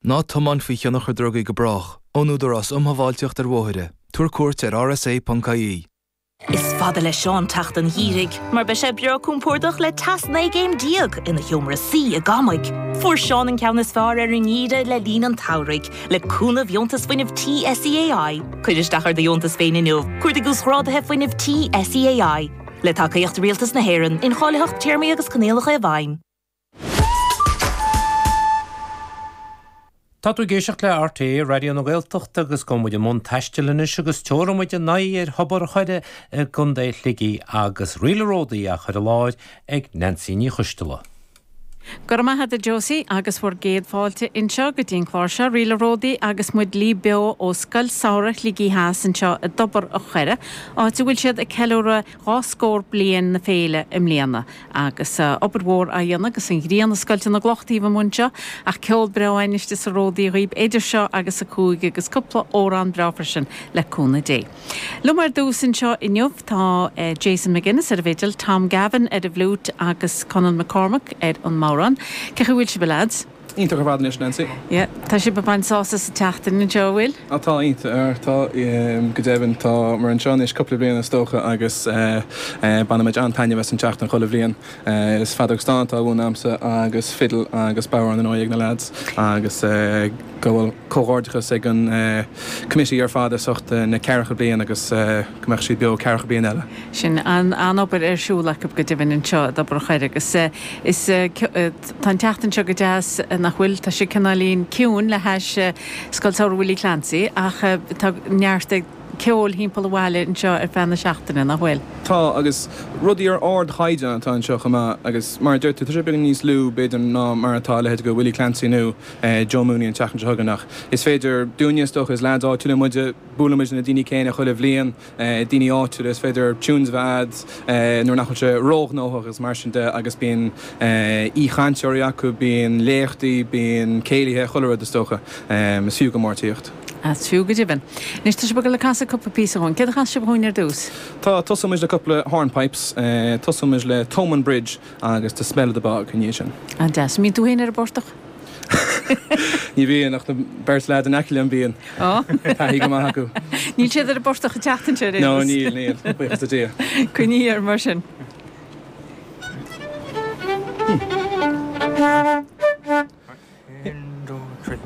Ná tiomáin faoi thionchar drugaí go brách. Ón Údarás Um Shábháilteacht ar Bhóithre, Tabhair cuairt ar rsa.ie. Is fada le Seán teacht an gheimhridh mar beidh sé breá cúmpórdach le teas 19 gcéim ina sheomra suí i gCamaigh. Fuair Seán an ceann is fearr ar an ngeimhreadh le linn an tsamhraidh le cúnamh Dheontas Fuinnimh Tí SEAI. Cuir isteach ar do dheontas féin inniu, cuardaigh Uasghrádaithe Fuinnimh Tí SEAI. Le tacaíocht Rialtas na hÉireann, incháilitheacht, téarmaí agus coinníollacha i bhfeidhm. Tá tú ag éisteacht le RTÉ Raidió na Gaeltachta agus tá muid i mbun taistil anois agus tabharfaidh muid ár n-aghaidh ar Thobar an Choire i gContae Shligigh agus Réalt an Ródaí á chur i láthair ag Neansaí Ní Choisdealbha. Go raibh maith agat a Josie agus bhur gcéad fáilte anseo go dtí an clár seo Réalt an Ródaí agus muid libh beo ó Scoil Samhraidh Shligigh Theas anseo i dTobar an Choire áit a bhfuil siad ag ceiliúradh dhá scór bliain na féile i mbliana. Agus obair mhór á dhéanamh agus an ghrian ag scoilteadh na gcloch taobh amuigh anseo, ach ceol breá in aisce sa ródaí dhaoib eidir seo agus a cúig, agus cúpla amhrán breá freisin, le cúnamh Dé. Liom ar dtús anseo inniu tá Jason McGuinness ar an bhfidil, Tom Gavin ar an bhfliúit agus Conall McCormack ar an mbodhrán. Cén chaoi a bhfuil sibh a leaids? Iontach ar fad anois, Nancy. Yeah, tá sibh ag baint sásamh as an tseachtain anseo, an bhfuil? Á, tá, iontach, tá, go deimhin. Tá muid anseo anois cúpla bliain is dócha agus bainimid an-taitneamh as an tseachtain chuile bhliain. Is feadóg stáin atá á mhúineadh agamsa agus fiddle agus bodhrán ar ndóigh ag na lads agus go bhfuil comhghairdeachas ag an committee ar fad as ucht na ceathracha bliain agus go mbeadh siad beo ceathracha bliain eile. Sin an-obair ar siúl acu go deimhin anseo i dTobar an Choire agus is. Tá an tseachtain seo go deas, nach bhfuil? Tá sé cineáilín ciúin le hais Scoil Samhraidh Willie Clancy ach tá neart ceoil thimpeall an bhaile anseo ar feadh na seachtaine, nach bhfuil? Tá, agus rudaí ar ardchaighdeán atá anseo chomh maith agus mar a deir tú, tá sé beagán níos lú b'fhéidir ná mar atá a leithéid de Willie Clancy nó Joe Mooney an tseachtain seo chugainn ach is féidir dúinne, is dócha, is leaids áitiúla muide, buailimid le na daoine céanna chuile bhliain. daoine áitiúla, is féidir tunes a bheith a'd nuair nach bhfuil sé róghnóthach agus mar sin de agus bíonn aoichainteoirí acu, bíonn léachtaí, bíonn céilithe, chuile rud is dócha. Is fiú go mór tíocht. Is fiú go deimhin. Anois tá sibh ag dul ag casadh cúpla píosa dhúinn. Céard a chasfaidh sibh dhúinn ar dtús? Tá, tosóidh muid le cúpla hornpipes, tosóidh muid le Thomond Bridge agus The Smell of the Bog ina dhiaidh sin. An-deas. An mbíonn tú féin ar an bportach? Ní bhíonn, ach na beirt leaid in aice liom bíonn. Ó. Taithí go maith acu. Níl siad ar an bportach an tseachtain seo ar aon nós. No, níl, níl, buíochas le Dia. Coinnígí oraibh mar sin. One, two, three.